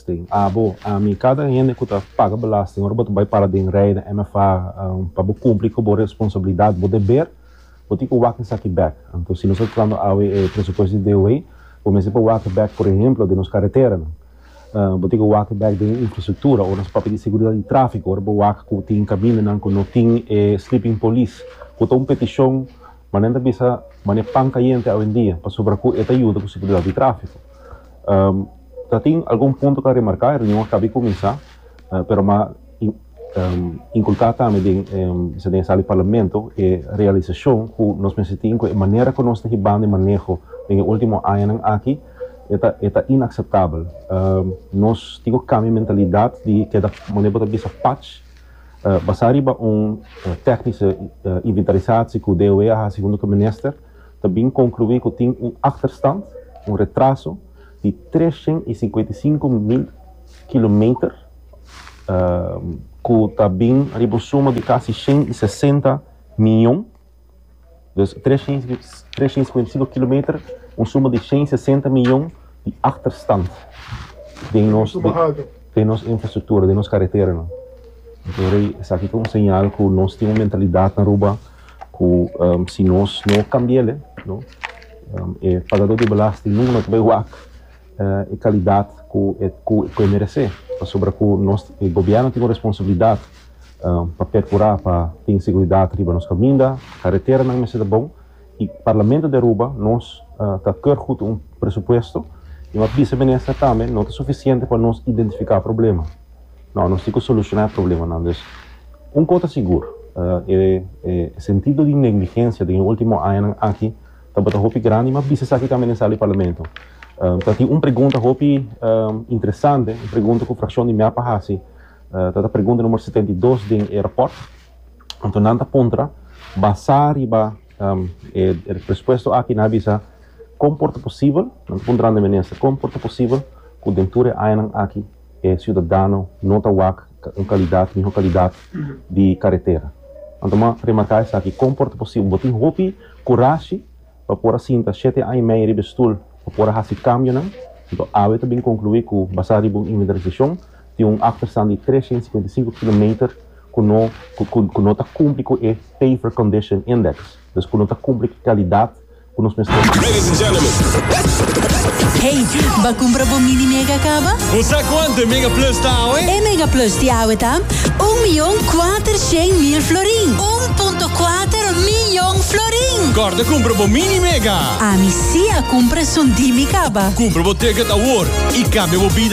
belasting, abo, ami, kada un hende ku ta paga belasting, ora bo ta bai para den rei na MFA pa bo kumpli ku bo responsabilidat, bo deber, bo tin ku wak esaki bek. Anto si nos ta tratando awe e presupuesto di DOW, bo mester por wak bek, por ehemplo, den nos kareteranan. Bo tin ku wak bek den e infrastruktura, ora nos papia di seguridat di trafiko, ora bo wak ku tin kamindanan ku no tin e sleeping polis, ku ta un petishon, manera nan ta bisa manera pan kayente awendia, pasobra ku e ta yuda ku seguridat di trafiko. ta tin algun punto ta remarká, e reunion a kabi kuminsá, pero m'a inkulká tambe den esei den e sala di Parlamento e realisashon ku nos mester tin ku e manera ku nos ta hibando e maneho den e último añanan aki e ta e ta inakseptabel. Nos tin ku kambia e mentalidat di keda maneho bo ta bisa pach basá riba un tèknische inventarisatie ku DOW a hasi huntu ku minister. ta bin konkluí ku tin un akterstand, un retraso, di tres shen i singenta i sinku mil kilometer, ku ta bin riba un suma di kasi shen i sesenta mion. Dus tres shen i singenta i sinku kilometer, un suma di shen i sesenta mion di akterstand den nos den nos infrastruktura, den nos kareteranan. Por esaki ta un señal ku nos tin un mentalidat na Aruba. ku si nos no kambia el no e pagadó di belasting nunka no ta bay wak e kalidat ku e meresé pasobra ku nos e gobièrnu tin un responsabilidat pa perkurá pa tin seguridat riba nos kaminda kareteranan mester ta bon i parlamento di Aruba nos ta kè hut un presupuesto i no a bisa minister tambe no ta sufisiente pa nos identifiká problema. No, nos tin cu soluciona e problemanan. Dus, un cos ta sigur, e sentido di negligencia den e ultimo añanan aki tabata hopi grandi, ma bisa esaki tambe den sala di Parlamento. Ta tin un pregunta hopi interesante, un pregunta cu fraccion di Mep a haci, ta ta pregunta numero setenta i dos den e rapport, anto nan ta puntra, basá riba e prespuesto aki, nan a bisa, Con por ta posibel, nan ta puntra nan den Minister, con por ta posibel cu den tur e añanan aki, e siudadano no ta wak un kalidat mihó kalidat di karetera. Anto bo a remarká esaki, kon por ta posibel bo tin hopi kurashi pa por a sinta shete aña i medio riba e stul pa por a hasi kambionan? Anto awe ta bin konkluí ku basá riba un inventarisashon tin un afterstan di tresha i sikuenta i sinku kilometer ku no ku no ta kumpli ku e Paver Condition Index, dus ku no ta kumpli ku e kalidat ku nos mester bai. Hey, ba kumpra bo Mini Mega kaba? Bo sa kuantu e Mega Plus ta awe? E Mega Plus di awe ta un miyon kuater shen mil florin. Un punto kuater miyon florin! Kòrda kumpra bo Mini Mega! Ami sí a kumpra esun di mi kaba. Kumpra bo ticket awor i kambia bo bida!